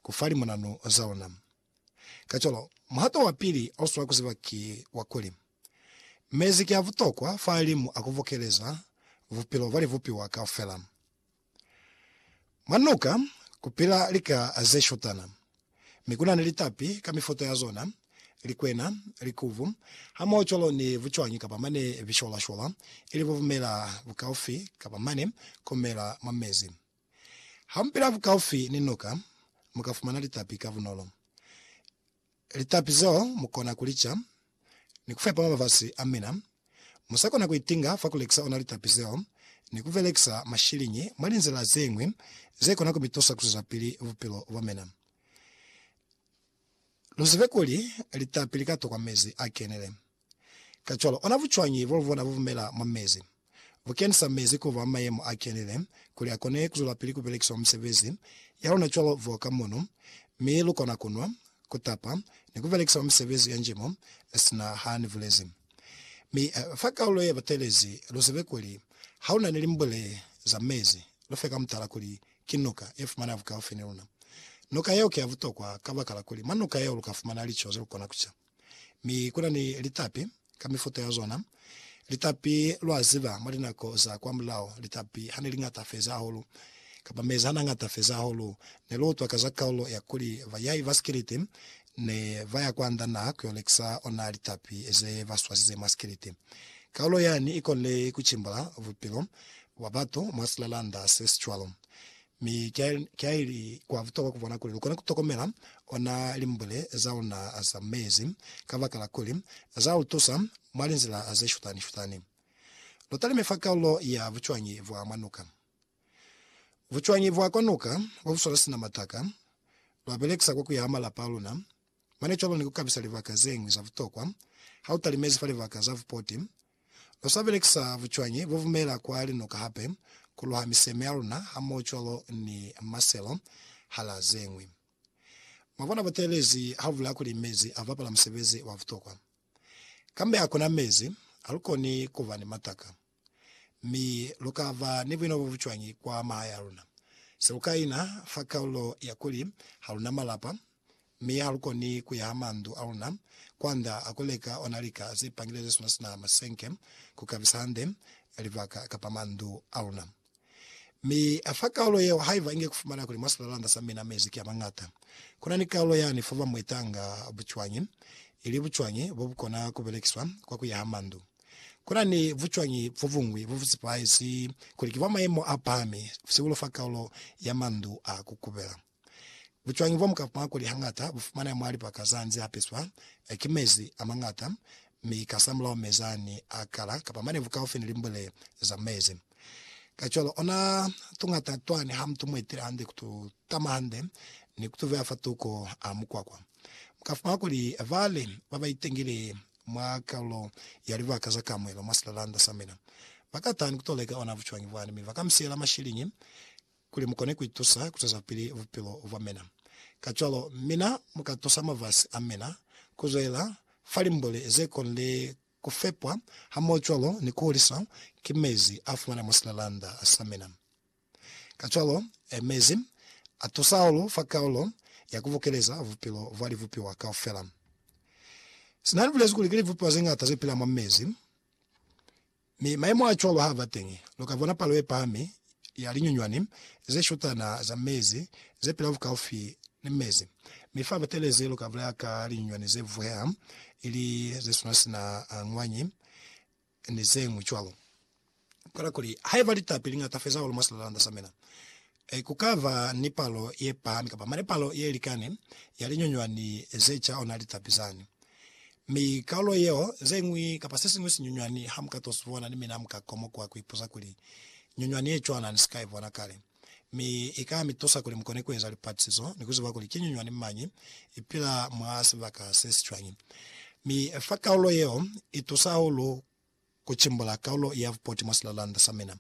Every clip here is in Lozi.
ku fa limonano za luna. Kacwalo, muhato wa pili o swa ku ziba ki wa kuli, Mezi ki a butokwa fa limu a ku bokeleza bupilo bwa libupiwa kaufela. Mwa nuka, ku pila lika ze shutana, mi ku na ni litapi ka mifuta ya zona, likwena, likubu, hamohocwalo ni bucwañi kapa mane bishwalashwala, ili bubumela bukaufi kapa mane ku mela mwa mezi. Ha mu pila bukaufi ni nuka, mu ka fumana litapi ka bunolo. Litapi zeo mu kona ku li ca ni ku fepa mabafasi a mina. Mu sa kona ku itinga fa ku lekisa ona litapi zeo ni ku belekisa mashiliñi mwa linzila ze ñwi ze kona ku mi tusa ku zwezapili bupilo bwa mina. Luzibe kuli litapi lika tokwa mezi a kenile. Kacwalo, ona bucwañi bolubona bubumela mwa mezi. Bukenisa mezi kuba mayemo a kenile kuli akone kuzwelapili kubelekiswa mwa misebezi yalona cwalo voka mono, mi lukona kunwa, kutapa, ni kubelekisa mwa misebezi ya njimo, sina ha nibulezi. Mi fa kalulo yebatelezi, luzibe kuli haluna ni limbule za mezi, lufe ka mutala kuli ki noka ye fumana bukaufi ni luna. Noka yeo ki ya butokwa kabakala kuli mwa noka yeo lu ka fumana lico ze lu kona ku ca. Mi ku na ni litapi ka mifuta ya zona. Litapi, lwa ziba, mwa linako za kwamulaho, litapi ha ne li ñata feza hahulu, kapa mezi ha n'a ñata feza hahulu, ne lu utwa ka za kaulo ya kuli bayai ba sikiliti ne ba ya kwa nda n'a ku yo lekisa ona litapi ze ba swazize mwa sikiliti. Kaulo yani i konile ku cimbula bupilo wa batu mwa silalanda se si cwalo, mi ki ili kwa butokwa ku bona kuli lu kona ku tokomela ona limbule za luna za mezi, kabakala kuli za lu tusa mwa linzila ze shutani-shutani. Lu talime fa kaulo ya bucwañi bwa mwa nuka. Bucwañi bwa kwa nuka bo bu swala sina mataka, lwa belekisa kwa ku yaha malapa a luna, mane cwalo ni ku kabisa libaka ze ñwi za butokwa, ha lu talimezi fa libaka za bupoti, Lu sa belekisa bucwañi bo bumela kwa linuka hape ku luha misemo ya luna hamohocwalo ni maselo hala ze ñwi. Mwa bona butelezi ha bu bulaya kuli mezi a bapala musebezi wa butokwa. Kambe ha ku na mezi, ha lu koni ku ba ni mataka. Mi lu ka ba ni buino bo bucwañi kwa mahae a luna, se lu ka ina fa kaulo ya kuli ha lu na malapa? mi ha lu koni ku yaha mandu a luna kwanda a ku leka ona lika ze pangile ze suna sina masenke ku kabisa hande libaka kapa mandu a luna. Mi a fa kaulo yeo haiba inge ku fumana kuli mwa silalanda sa mina mezi ki a mañata. Ku na ni kaulo yani fo ba mu itanga bucwañi, ili bucwañi bo bu kona ku belekiswa kwa ku yaha mandu. Ku na ni bucwañi bo buñwi bo bu sepahaezi kuli ki bwa mayemo a pahami, sihulu fa kaulo ya mandu a ku kubela. Bucwañi bwa mu ka pona kuli hañata bu fumaneha mwa libaka za nze a peswa ki mezi a mañata mi kasamulaho mezi a ne a kala kapa manevu kaufi ni limbule za mezi. Kacwalo, ona tuñata twa ne ha mu tu mu etile hande ku tu tama hande ni ku tu beya fa tuko a mukwakwa. Mu ka fumana kuli ba li ba ba itengile mwa kalulo ya libaka za kamuelo mwa silalanda sa mina ba ka taha ni ku to leka ona bucwañi bwani mi ba ka mu siyela mashiliñi kuli mu kone ku itusa ku zwezapili bupilo bwa mina. Kacwalo, mina mu ka tusa mafasi a mina ku zwelela fa limbuli ze konile ku fepwa hamohocwalo ni ku huliswa ki mezi a fumana mwa silalanda sa mina. Kacwalo, mezi a tusa hahulu fa kaulo ya ku bukeleza bupilo bwa libupiwa kaufela. Sina ni bulezi kuli ki libupiwa ze ñata ze pila mwa mezi, Mi mayemo a cwalo ha ba teñi, lu ka bona palo ye pahami ya linyunywani ze shutana za mezi ze pila bukaufi ni mezi. Mi fa ba telezi, lu ka bulaya ka linyunywani ze vuheha, ili ze suna sina a ñwanyi, ni ze ñwi cwalo. Ku na kuli, haiba litapi li ñata feza hahulu mwa silalalanda sa mina, Kukaba ni palo ye pahami kapa mane palo ye likani ya linyunywani ze ca ona litapi zani. Mi kaulo yeo, zeñwi kapa sesiñwi sinyunywani hamuka to sibona ni mina muka komokuha kuipuza kuli, Nyunywani ye cwana ni si ka ibona kale. Mi ika mi tusa kuli mukone kueza lipatisizo ni kuziba kuli ki nyunywani mañi ipila mwa sibaka sesicwañi. Mi fa kaulo yeo itusa hahulu Ku cimbula kaulo ya bupoti mwa silalanda sa mina.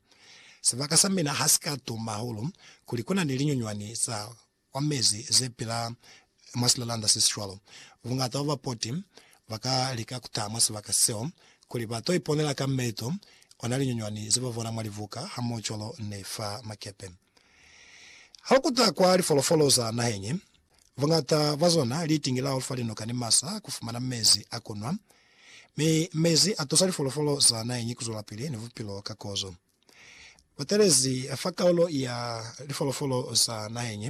Sibaka sa mina ha si ka tuma hahulu kuli ku na ni linyunywani za kwa mezi ze pila mwa silalanda se si cwalo. Bungata bwa bapoti ba ka lika ku taha mwa sibaka seo kuli ba to iponela ka meeto ona linyunywani ze ba bona mwa libuka hamohocwalo ni fa makepe. Ha lu kuta kwa lifolofolo za naheng, Buñata bwa zona li itingelaho fa linuka ni masa ku fumana mezi a ku nwa, mi mezi a tusa lifolofolo za naheñi ku zwelapili ni bupilo ka kozo. Butelezi fa kaulo ya lifolofolo za naheñi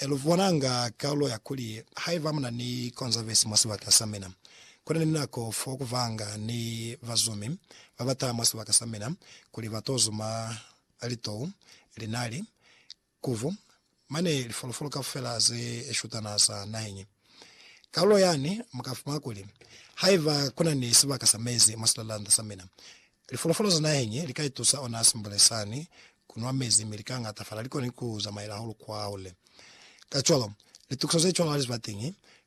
lu bonanga kaulo ya kuli, Haiba muna ni konzavesi mwa sibaka sa mina, ku na ni nako fo ku vanga ni bazumi ba ba taha mwa sibaka sa mina kuli ba to zuma litou, linali, Kufu, mane lifolofolo kaufela ze shutana za naheñi. Kalulo yani mu ka fumana kuli, Haiba ku na ni sibaka sa mezi mwa silalanda sa mina, lifolofolo za naheñi li ka itusa ona simbule sani ku nwa mezi mi li ka ngatafala, li koni ku zamaela hahulu kwahule. Kacwalo, litukiso ze cwalo ha li si ba teñi,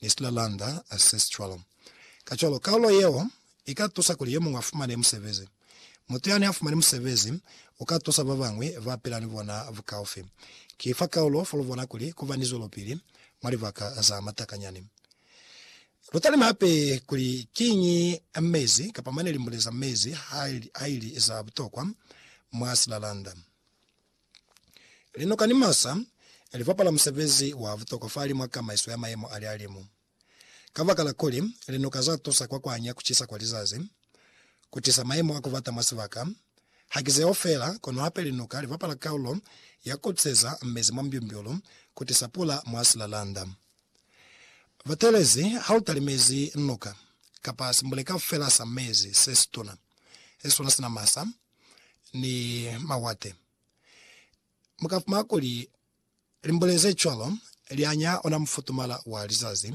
ni Slalanda Ancestral. Kacwalo, kaulo yeo i ka tusa kuli yo muñwi a fumane musebezi. Mutu yani a fumani musebezi u ka tusa ba bañwi ba pila ni bona bukaufi. Ki fa kaulo fo lu bona kuli ku ba ni zwelopili mwa libaka za matakanyani. Lu talime hape kuli kiñi mezi kapa mane limbule za mezi ha i li za butokwa mwa Slalanda. Linoka ni masa li bapala musebezi wa butokwa fahali mwa kamaiso ya mayemo a lihalimu. Kabakala kuli linoka za tusa kwa kuanya kucisa kwa lizazi, ku tisa mayemo a kubata mwa sibaka, ha ki zeo feela, kono hape linoka li bapala kaulo ya kuceza mezi mwa mbyumbyulu, ku tisa pula mwa silalanda. Batelezi, ha u talimezi noka, kapa simbuleka feela sa mezi se situna, se sona sina masa, ni mawate. Mu ka fumana kuli limbule ze cwalo li anya ona mufutumala wa lizazi,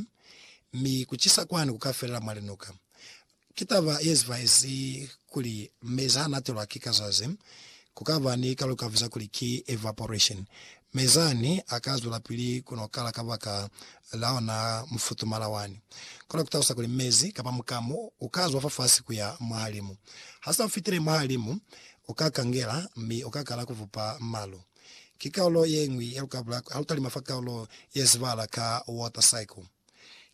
mi ku cisa kwani ku ka felela mwa linuka. Ki taba ye zibaezi kuli mezi ha natelwa ki kazazi, ku ka ba ni kalukavu za kuli ki evaporation, Mi zani a ka zwelapili ku no kala kabaka la ona mufutumala wani. Kono ku talusa kuli mezi kapa mukamu u ka zwa fafasi ku ya mwahalimu. Ha sa u fitile mwahalimu, u ka kangela mi u ka kala ku vupa malu. Ki kaulo ye ñwi ya lukabula ha lu talima fa kaulo ye zibahala ka water cycle.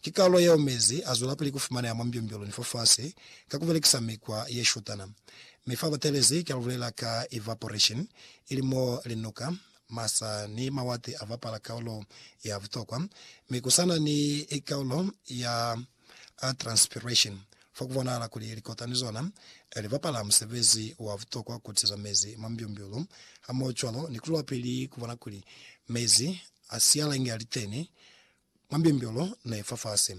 Ki kalulo yeo mezi azwelapili kufumaneha mwa mbyumbyulu ni fafasi ka kubelekisa mikwa yeshutana. Mi fa batelezi kia lubulela ka evaporation, ili moo linuka, masa ni mawati avapala kaulo ya butokwa, mi kusana ni kaulo ya a transpiration, fa kubonahala kuli likota ni zona livapala musebezi wa butokwa kutiza mezi mwa mbyumbyulu, hamoho cwalo ni kuzwelapili kubona kuli mezi asialenge aliteni mwa mbyumbyulu ne i fafasi,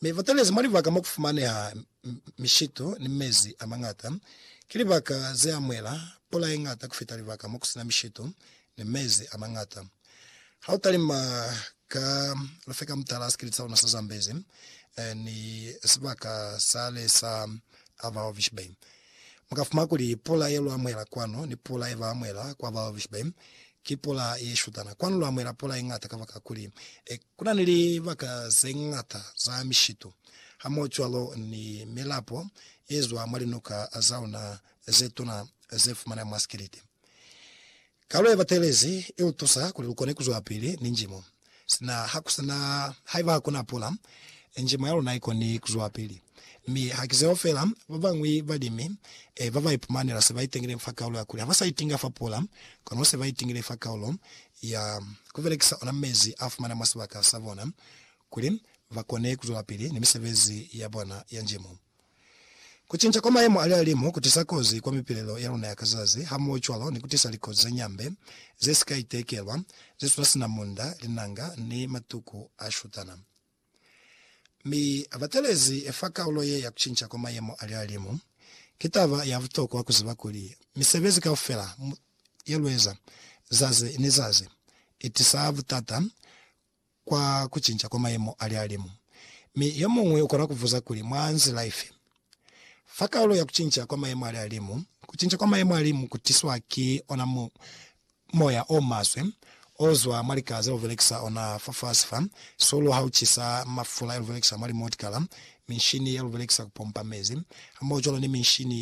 mi ba talezi mwa libaka mo ku fumaneha mishitu ni mezi a mañata. Ki libaka ze amuela pula ye ñata ku fita libaka mo ku si na mishitu ni mezi a mañata. Ha u talima ka lufeka mutala sikiliti sa luna sa Zambezi ni sibaka sale sa Ava Hovis Bay, Mu ka fumana kuli pula ye lu amuhela kwanu ni pula ye ba amuhela kwa ba babushibe ki pula ye shutana. Kwanu lu amuhela pula ye ñata kabakakuli ku na ni libaka ze ñata za mishitu hamohocwalo ni milapo ye zwa mwa linuka za luna ze tuna ze fumaneha mwa sikiliti. Kalu yebatelezi ilutusa kuli lukone kuzwelapili ni njimo sina hakusina haiba hakuna pula. Njimo yaluna ikoni kuzwelapili, mi hakizeo feela. Babañwi balimi babaipumana se baitengileñi fa kaulo yakuli habasa itinga fa pula, kono se baitingile fa kaulo ya kubelekisa ona mezi afumana mwa sibaka sabona kuli bakone kuzwelapili ni misebezi yabona ya njimo? Kucinca kwa mayemo a lihalimu kutisa kozi kwa mipilelo ya luna ya ka zazi, hamohocwalo ni kutisa likozi za nyambe ze si ka itekelwa, ze suna sina munda, linanga, ni matuku a shutana. Mi batelezi fa kaulo ye ya kucinca kwa mayemo a lihalimu, ki taba ya butokwa kuziba kuli misebezi kaufela ye lueza zazi ni zazi itisa butata kwa kucinca kwa mayemo a lihalimu, mi yomuñwi ukona kubuza kuli, Mwa nzila ifi? Fa kaulo ya kucinca kwa mayemo a lihalimu, kucinca kwa mayemo a limu kutiswa ki ona moya o maswe ozwa mwa lika zelubelekisa ona fafasi fa. Sulu ha ucisa mafula yalubelekisa mwa limotikala, minshini yalubelekisa kupompa mezi, hamohocwalo ni minshini